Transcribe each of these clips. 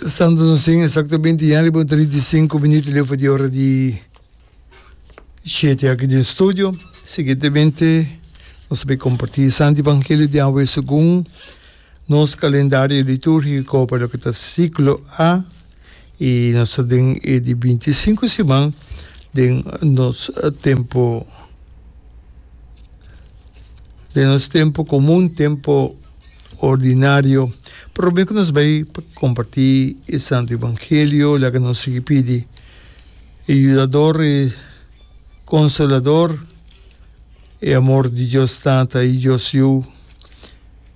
Santo nos sin exactamente ya riba un 35 minuto leu pa di ora di siete aki den studio. Siguientemente nos bai comparti Santo Evangelio di awe segun nos calendario liturgico pa loke ta ciclo A y nos ta den e di 25 siman den nos tempo den nos tempo comun, tempo Ordinario, promé ku nos bai pa kompartí e Santu Evangelio, laga nos sigui pidi e Yudador, e Konsolador, e amor di Dios Tata i Dios Yu,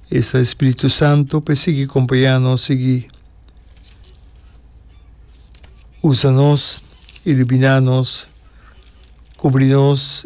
esa e Spiritu Santu, pa e sigui kompañá nos, sigui usa nos, iluminá nos, kubri nos.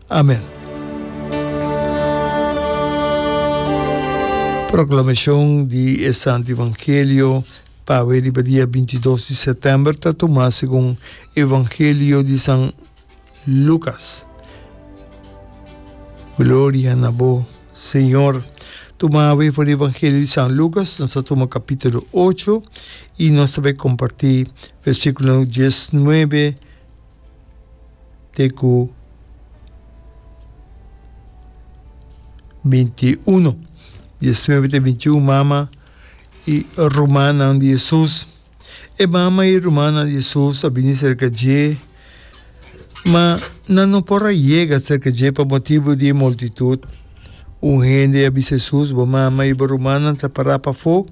Amen. Proclamacion di e Santo Evangelio pawe riba dia binti i dos di Setember ta tuma segun Evangelio di San Lucas. Gloria na bo, Señor. Tuma awe for di Evangelio di San Lucas, nos ta tuma capítulo ocho y nos ta bay comparti versículo dies nuebe, te ku binti i uno. Diesnueve te binti i un mama i rumannan di Hesus. E mama i rumannan di Hesus a bini serka dje, ma nan no por a yega serka dje pa motibu di e multitut. Un hende a bisa Hesus, Bo mama i bo rumannan ta pará pafó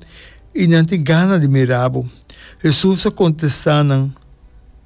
i nan tin gana di mira bo. Hesus a kontestá nan,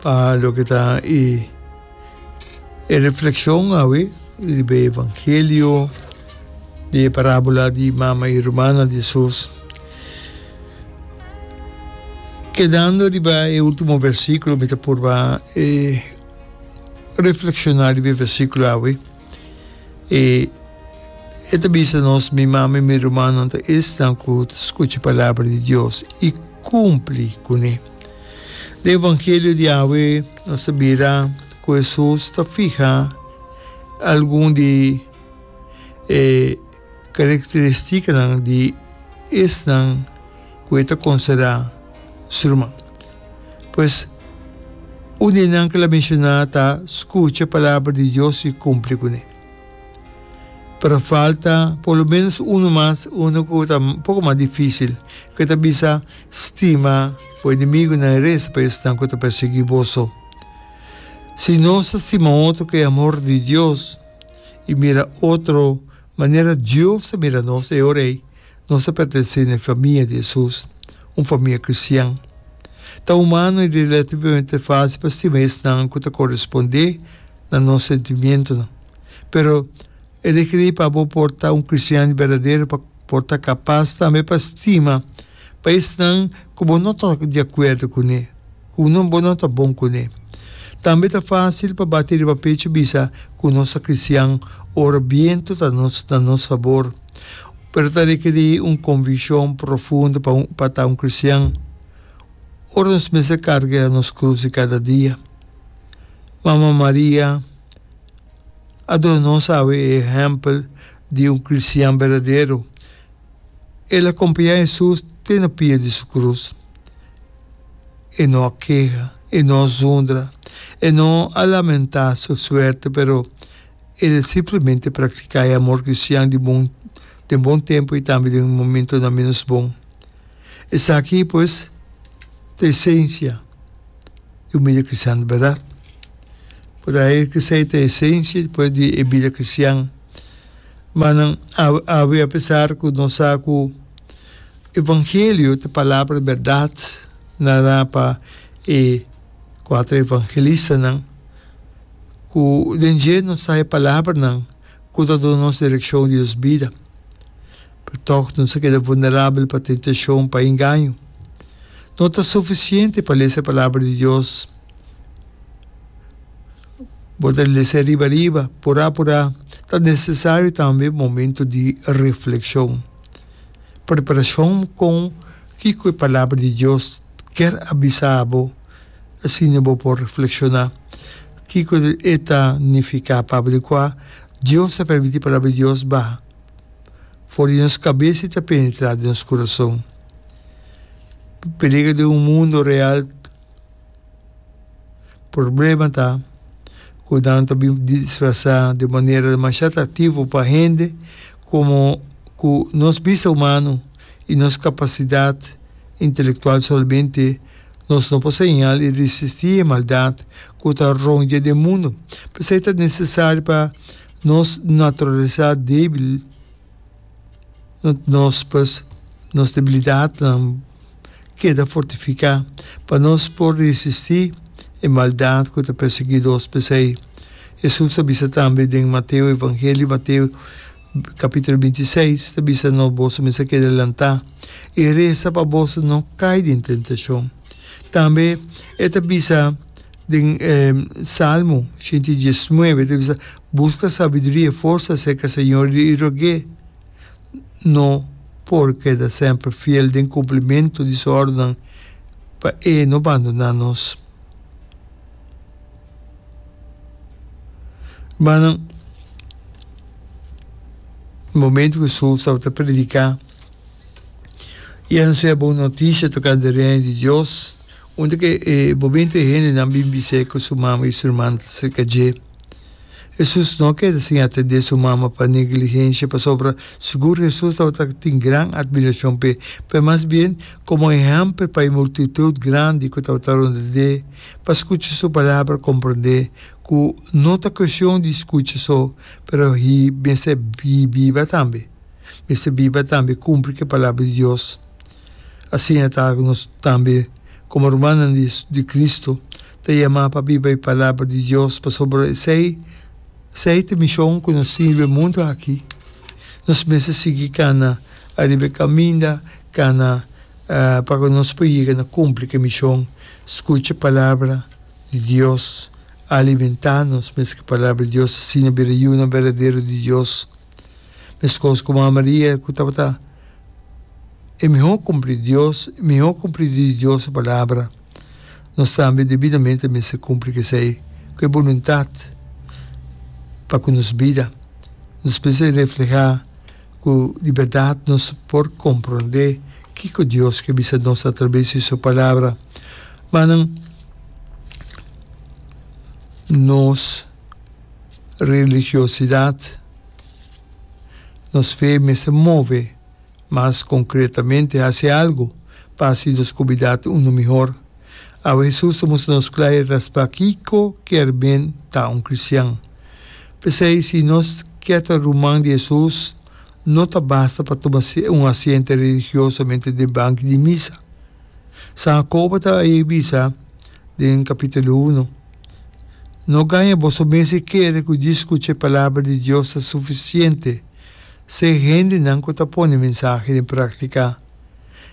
Pa loke ta e e reflekshon awe riba e evangelio di e parabula di mama i rumana di Jesus, kedando riba e ultimo versikulo mi ta purba e reflekshona riba e versikulo awe. E e ta bisa nos, Mi mama i mi rumannan ta esnan ku ta skucha palabra di Dios i. kumpli kuné. Den e evangelio di awe nos a bira ku Hesus ta fiha algun di e karakteristikanan di esnan ku e ta konsiderá su ruman. Pues, un di nan ku el a menshoná ta skucha palabra di Dios i kumpli kuné. pero falta por lo menos uno mas, uno cu ta un poco mas dificil, cu e ta bisa, Stima bo enemigonan y reza pa esnan cu ta persegui boso. Si nos ta stima otro cu e amor di Dios y mira otro manera Dios ta mira nos e ora ey, Nos ta pertenesé na e famia di Hesus, un famia kristian. Ta humano i relativamente fásil pa stima esnan ku ta korespondé na nos sentimientonan. Pero, e rekerí pa bo por ta un kristian di berdadero pa por ta kapas tambe pa stima pa esnan ku bo no ta di akuerdo kuné, ku bo no ta bon kuné. Tambe ta fásil pa bati riba pechu bisa ku nos ta kristian ora bientu ta na nos fabor. Pero ta rekerí un konvishon profundo pa un pa ta un kristian ora nos mester karga nos krus di kada dia. Mama Maria a duna nos awe e ehèmpel di un kristian berdadero. El a kompañá Hesus te na pia di su krus. E no a keha, e no a zundra, e no a lamentá su suerte, pero El simplemente praktiká e amor kristian di bon den bon tempu i tambe den momentunan ménos bon. Esaki, pues, ta esensia di un bida kristian di bèrdat. Por a e ke sa e ta esensia, pues, di e bida kristian. Ma nan, awe, apesar ku nos sa ku evangelio ta palabra di bèrdat nará pa e kuater evangelista nan, ku den dje nos ta haña palabranan ku ta duna nos direkshon di nos bida. Pero tòg nos a keda vulnerabel pa tentashon, pa engaño. No ta sufisiente pa lesa e Palabra di Dios. Bo ta lesa riba riba, purá purá. Ta nesesario tambe momentu di reflekshon. Preparashon kon kiko e Palabra di Dios kier a bisa bo. Asina bo por reflekshoná, Kiko e ta nifiká papa di kua Dios ta permití Palabra di Dios baha for di nos kabes i ta penetrá den nos kurason? Peliger den un mundu real Problema ta ku nan ta bin disfrasá di un manera demasiá atraktivo pa hende komo ku nos bista humano i nos kapasidat intelektual solamente Nos no por señal i resisti e maldat ku ta rònt dje den mundu. P'esei ta nesesario pa nos naturalisá débil no nos pues nos debilidatnan keda fortifiká pa nos por resisti e maldat ku ta persiguidos. P'esei Hesus a bisa tambe den Mateo, Evangelio Mateo. Capítulo binti seis ta bisa nos boso mester keda lanta i resa pa boso no cai den tentacion. Tambe e ta bisa den Salmo shenta i diesnuebe, ta bisa, Busca sabiduria i forsa acerca Señor di Israel. No por keda semper fiel den cumplimento di su ordennan pa e no bandona nos. Hermano, momento cu Saul tabata predica, i a hacia bon noticia tocante e Reino di Dios, unda cu e momento e hendenan bin bis'é cu su mama i su herman ta cerca dje. Hesus no a keda sin atende su mama pa negligencia, pasobra sigur Hesus tabata tin gran admiracion p'e, pero mas bien como ehempel pa e multitud grandi cu tabata rond'é. pa skucha su palabra komprondé ku no ta kueshon di skucha so pero hi mester hi biba tambe mester biba tambe kumpli ke palabra di Dios asiña ta ku nos tambe komo rumannan di di Kristu ta yamá pa biba e palabra di Dios pasobra esei esei ta mishon ku nos tin riba e mundu aki nos mester sigui kana ariba e kaminda kana Pa ku nos por yega na kumpli ku e mishon, skucha e palabra di Dios, alimentá nos mes ku e palabra di Dios, asina bira yunan berdadero di Dios. Meskos ku Mama Maria ku tabata e mihó kumplidu di Dios, e mihó kumplidu di Dios su palabra, nos tambe debidamente a mester kumpli ku esei, ku e boluntat pa ku nos bida nos mester reflehá Cu di berdad nos por comprende kico Dios ke bisa nos atraves di Su Palabra, ma nan nos religiosidad, nos fe mester move mas concretamente haci algo pa así nos cubidad uno mihor. Awe Hesus ta mustra nos klai respè kiko kier men ta un kristian. P'esei si nos kier ta ruman di Hesus, no ta basta pa tuma un asiente religiosamente den banki di misa. San Jacobo ta a bisa den kapitulo uno, No gaña boso mes e kere ku di skucha e palabra di Dios ta sufisiente. Seg hendenan ku ta pone mensahe den praktika.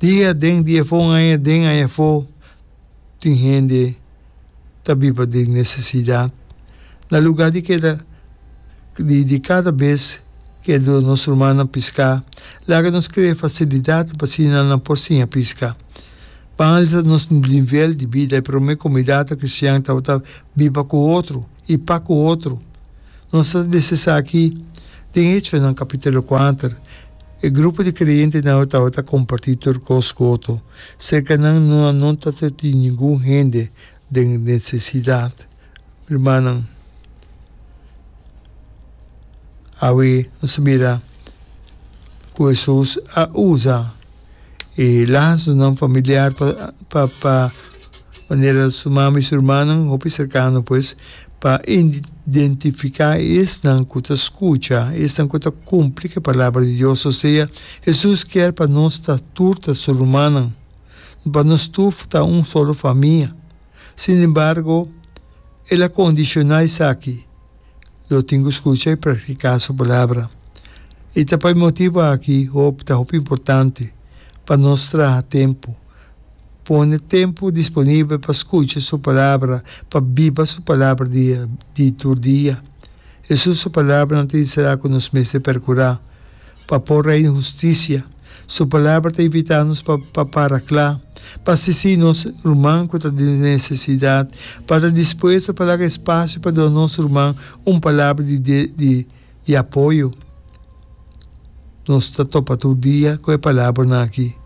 Dia aden, dia afó, un aña aden, un aña afó, tin hende ta biba den nesesidat. Na lugá di keda, di kada bes ku e duna nos rumannan piská, laga nos krea fasilidatnan pa asina nan por siña piska. Pan alisa nos nivel di bida, e promé komunidatnan kristian tabata biba ku otro. i pa ku otro. Nos ta bisa esaki den Hechonan kapitulo kuater. E grupo di kreentenan a tabata kompartí tur kos ku otro. Serka nan no a no tabata tin ningun hende den nesesidat. Rumannan, awe nos a mira ku Hesus a usa. e lasonan familiar pa pa pa manera su mama y su hermanan hopi cercano pues pa identifica esnan cu ta scucha esnan cu ta cumpli cu e palabra di Dios o sea Jesus kier pa nos ta tur ta su rumannan pa nos tur ta un solo famia sin embargo el a condiciona esaki. Lo tin cu scucha y practica su Palabra. I ta pa e motibo aki hopi ta hopi importante pa nos traha tempu, pone tempu disponibel pa scucha su Palabra, pa biba su Palabra dia di tur dia. Jesús su palabranan ta di será cu nos mester percura pa por Reino Husticia. Su Palabra ta invitá nos pa para kla, pa asistí nos ruman ku ta den nesesidat, pa ta dispuesto pa laga espasio pa duna nos ruman un palabra di apoyo. Nos ta topa tur dia ku e palabranan akí,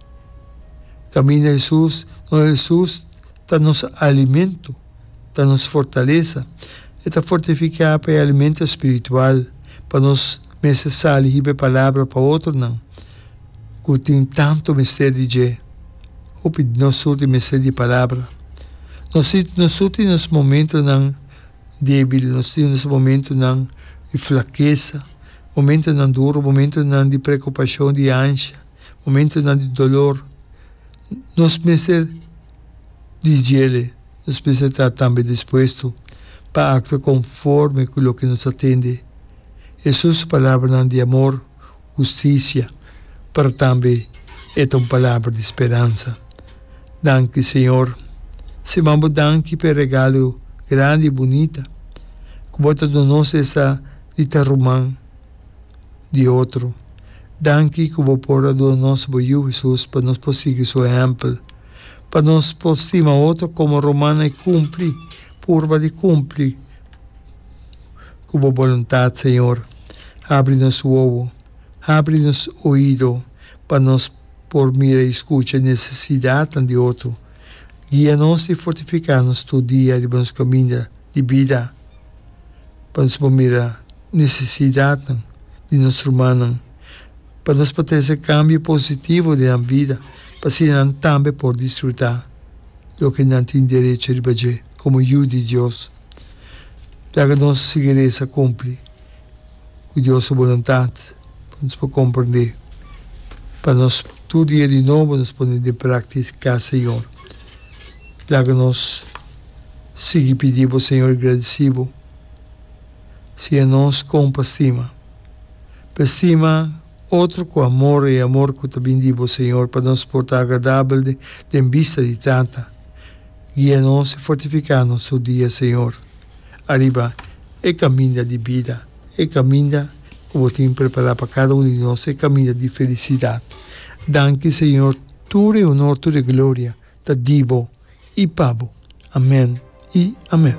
Kaminda Hesus, nos Hesus ta nos alimentu. ta nos fortalesa. E ta fortifiká pa e alimento spiritual pa nos mester sali hiba e palabra pa otronan ku tin tantu mester di dje. Hopi di nos surti mester di e palabra. Nos nos surti nos momentonan débil, nos tin nos momentonan di flakesa, momentonan duru, momentonan di preokupashon, di ansha, momentonan di dolor. Nos mester. di djele, nos mester ta tambe dispuesto pa aktua konforme ku loke nos ta tende. Hesus su palabranan di amor, hustisia, pero tambe e ta un palabra di speransa. Danki, Señor. Siman bo danki pa e regalo grandi i bunita ku bo ta duna nos esta di ta ruman. di otro. Danki ku bo por a duna nos bo Yu Hesus pa nos por sigui Su ehèmpel, pa nos por stima otro komo Romana i kumpli, purba di kumpli ku Bo boluntat, Señor. Habri nos wowo, habri nos oido pa nos por mira i skucha e nesesidatnan di otro. Guia nos i fortifiká nos tur dia riba nos kaminda di bida. pa nos por mira necesidadnan di nos rumannan, pa nos por trese cambio positivo den nan bida, pa asina nan tambe por disfruta loke nan tin derecho riba dje como yu di Dios. Plaga nos sigeresa cumpli cu Dios su boluntad, pa nos por comprende, pa nos tur dia di nobo nos pone den practica, Señor. Plaga nos. Sigui pidi bo Señor gradeci bo si e nos con pa stima. Pa stima otro cu amor, e amor cu ta bin di bo Señor pa nos por ta agradabel den bista di Tata. Guia nos y fortifica nos tur dia Señor ariba e caminda di bida, e caminda cu bo tin prepara pa cada uno di nos, e caminda di felicidad. Danki Señor, tur e honor, tur e gloria Ta di bo i pa bo. Amen i amen.